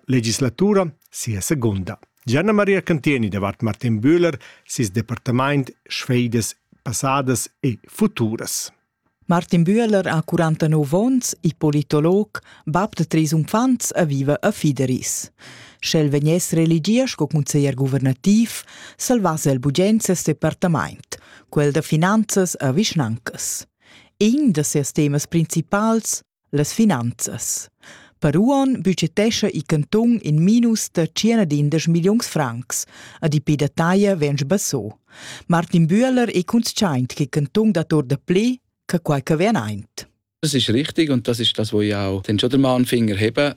legislatura sia segunda. Gianna Maria Cantieni davart Martin Bühler, ses departamaint sfeidas passadas e futuras. Martin Bühler ha 49 onns, ippolitolog, bab de treis unfants e viva a Fideris. Sch'el vegness religia sco conseglier guvernativ, salvasse el bugens ses departamaint, quel da finanzas e vischnancas. In da sias temas principals las finanzas. Per uon budgetescha il cantun in minus da 110 milliuns francs, a di pe da taglia vens basso. Martin Bühler è consciaint che il cantun dat or da pli che quai che vien aint. Das ist richtig und das ist das, was ich auch dann schon den Mahnfinger hebe.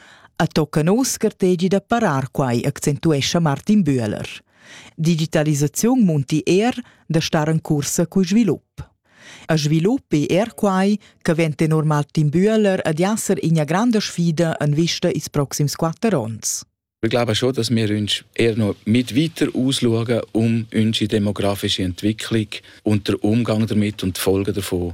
A tocca nos scartegi da parar quai, accentuescha Martin Bühler. Digitalisaziun munti er da star en cursa cul svilup. A svilup è er quai che vent tenor Martin Bühler ad esser ina granda sfida en vista ils proxims quatter onns. Ich glaube schon, dass wir uns eher noch mit weiter ausschauen um unsere demografische Entwicklung und den Umgang damit und die Folgen davon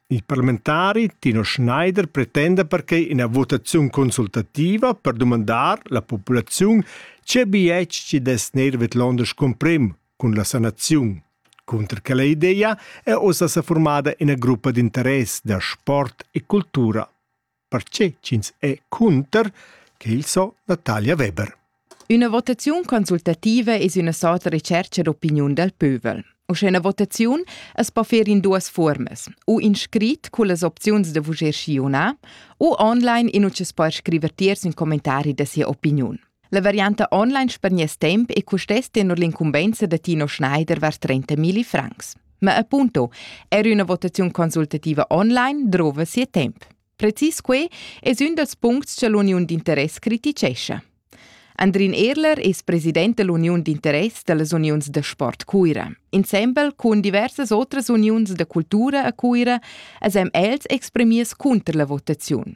Il parlamentari Tino Schneider pretenda perquei ina votaziun consultativa per dumandar la populaziun tge bietg che dess neir vedlonder scumprem cun la sanaziun. Cunter quella idea è ossa sa formada ina gruppa d'interess da sport e cultura. perche ch'ins è cunter, che il so Natalia Weber. Üna votaziun consultativa es üna sorta recercha d'opiniun dal pövel. U sche üna votaziun es po fer in duas fuormas, u in scrit cullas opziuns da vuger schiuna, u online in utschas per scriver tiers ün commentari da sia opiniun. La varianta online per nies temp e custess tenor l'incumbensa da Tino Schneider vers 30.000 francs. Ma appunto, er una votazione consultativa online drova sia temp. Precis quei es un dels puncts che l'Uniun d'interess criticescha. Andrin Erler es president dell'Uniun d'interess dellas uniuns da sport Cuira. Insembel con diversas otras uniuns da cultura a Cuira esem els exprimiers conter la votazione.